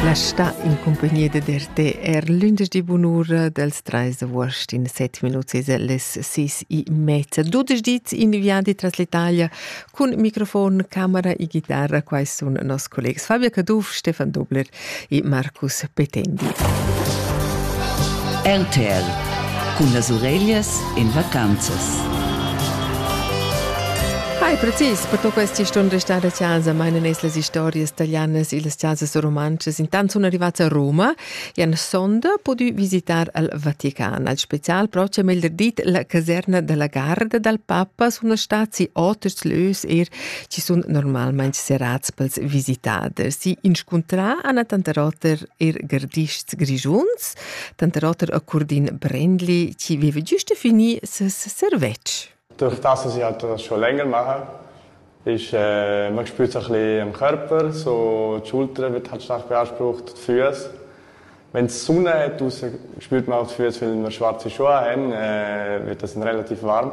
La sta in cumpagnia dad RT er lunderdi bunura dals trais d'avuost in set minuts es les sis e mezza. Dudesch dits in viadi tras l'Italia cun microfon, camera e chitarra. Quai sun nos collegs Fabio Caduff, Stefan Dobler e Marcus Petendi. RTL cun las ureglias in vacanzas. Hai precis, per tu questi stun restare a casa, ma in es las historias italianas e las casas romanzas intant sun arrivats a Roma e an sonda pudü visitar al Vatican. Al special proxim il dit la caserna della garda dal papa sun stati oters lös er ci sun normalmaing serats pels visitaders. Si inscuntrà Anna Tanterotter er gardists grigiuns tanter oter a Curdin Brendli, chi veva giusta fini ses servetsch. Dürft das, dass ich halt das schon länger mache. Ich äh, man spürt sich ein bisschen am Körper, so die Schulter wird halt stark beansprucht, die Füße. Wenn es Sonne hat, spürt man auch die Füße, weil wir schwarze Schuhe haben, äh, wird das dann relativ warm.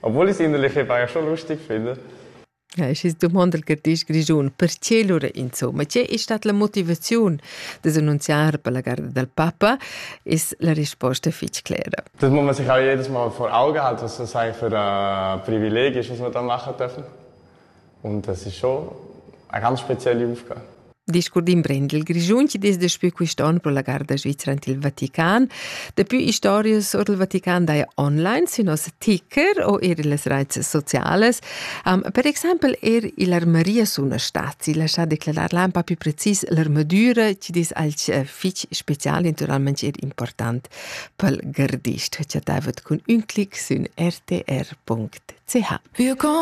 Obwohl ich es innerlich war schon lustig finde. Ja, es ist domanda che ti Grigiun, perché lura insomma, che è stata la motivazione di annunziare per la garda del Papa, ist la risposta fitch clara. Das muss man sich auch jedes Mal vor Augen halten, was das eigentlich für ein Privileg ist, was wir da machen dürfen. Und das ist schon eine ganz spezielle Aufgabe. Discurs d'imprend il Grischun chi dess daspü quist'on pro la garda svizra ant il Vatican. Daplü istorias or del Vatican daja online sün nos ticker o eir illas raits socialas. Um, per exaimpel eir ill'armeria sun stati lascià declarar lampa più precis l'armadura chi dess alch eh, fich special e naturalmente eir important pel gardist, chattaivat cun ün clic sün rtr.ch. Willkommen